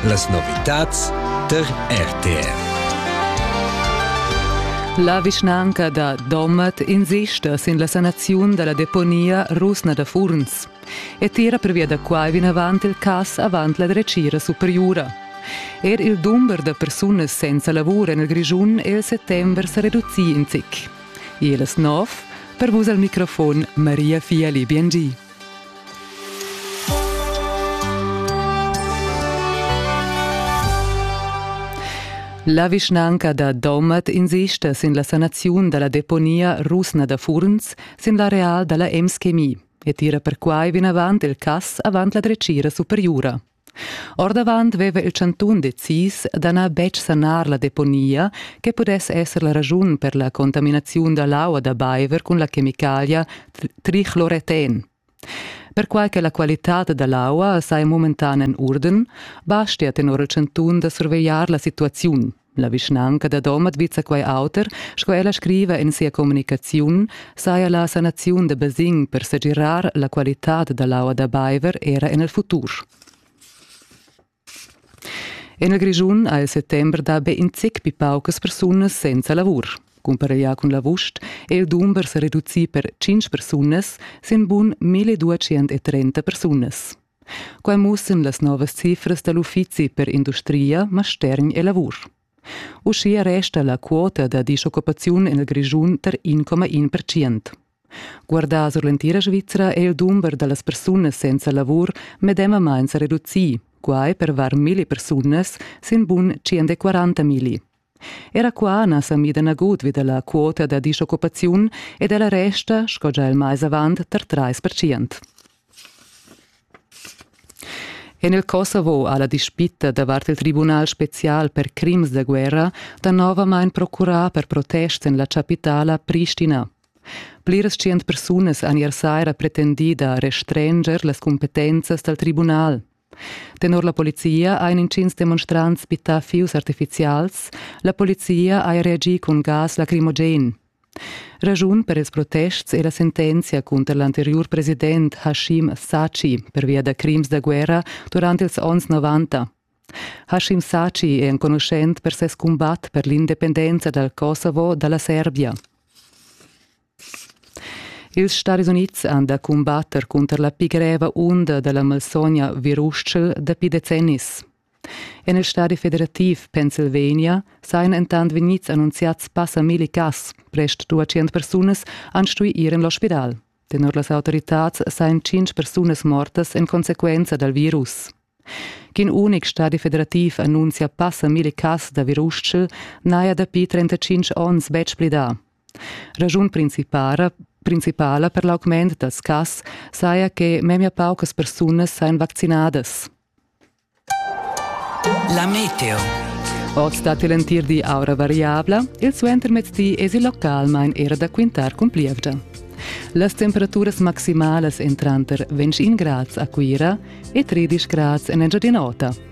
Las novitads tar RTR. La vischnanca da Domat insista sin la sanaziun da la deponia rusna da Furns e tira pervia da quai vinavant il cass avant la dretgira superiura. Er il dumber da persunas senza lavur en il Grischun è il settembre sa reducì in zic. E las nov, per vus al microfon Maria Fiali Biengi. La vischnanca da Domat insista sin la sanaziun dalla deponia rusna da Furns sin l'areal dalla Ems Chemie e tira perquai vinavant il cass avant la dretgira superiura. Ordavant veva il chantun decis da na betg sanar la deponia che pudess esser la raschun per la contaminaziun da l'aua da baiver cun la chemicalia trichloreten. Perquai che la qualitad da l'aua sai momentan en urden, bastia tenor il chantun da survegliar la situaziun. La vischnanca da Domat vizza quai auter, sco ella scriva en sia communicaziun, saja la sanaziun da basegn per segirar la qualitad da l'aua da baiver era en il futur. En il Grischun ha il settember dà be in zic pli paucas persunas senza lavur. Cumpareglià cun l'avust è il dumber sa reducì per 5 persunas sin bun 1230 persunas. Quai mussan las novas cifras da l'uffizi per industria, mastergn e lavur. Uschia resta la quota da dischoccupaziun en il Grischun tar 1,1 percent. Guardà sur l'entira Svizra è il dumber da las persunas senza lavur medemamain sa reducì, quai per var milli persunas sin bun 140 milli. Era qua na sa mida nagut vi da la quota da dischoccupaziun ed ella resta, sco già il mais avant, tar trais percent. En il Kosovo ha la dispita davart il tribunal special per crims da guerra danovamain procurà per protest en la chapitala Pristina. Pliras tschient persunas han ier saira pretendì da restranger las cumpetenzas dal tribunal. Tenor la polizia ein intgins demonstrants bittà fius artificials, la polizia ha reagì cun gas lacrimogen. Raschun per ils protests è la sentenzia cunter l'anteriur president Hashim Sachi pervia da crims da guerra durant ils onns 90. Hashim Sachi è enconuschent per ses cumbat per l'independenza dal Kosovo dalla Serbia. Ils Stadis Unids han da cumbatter cunter la pli greva unda da la malsogna virustschel dapi decennis. En il stadi federativ Pennsylvania sajan entant vegnids annunziads passa milli cas. Prest 200 persunas han stuì ir en l'ospidal. Tenor las autoritads sajan tschintg persunas mortas en consequenza dal virus. Ch'in unic stadi federativ annunzia passa milli cas da virustschel n'haja dapi 35 onns betg plidà. Raschun principara principala per l'augment dals cas saja che memia paucas persunas sajan vaccinadas. La meteo. Oz datti l'entir di aura variabla, il suentermezdi esi localmain era da quintar cun plievgia. Las temperaturas maximalas èn tranter 20 grads a Cuira e 13 grads en Engiadin'Ota.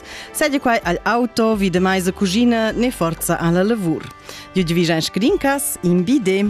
Sedi quai al auto vi de meisa cugina ne forza alla lavur. Ju vi scadin cas in bide.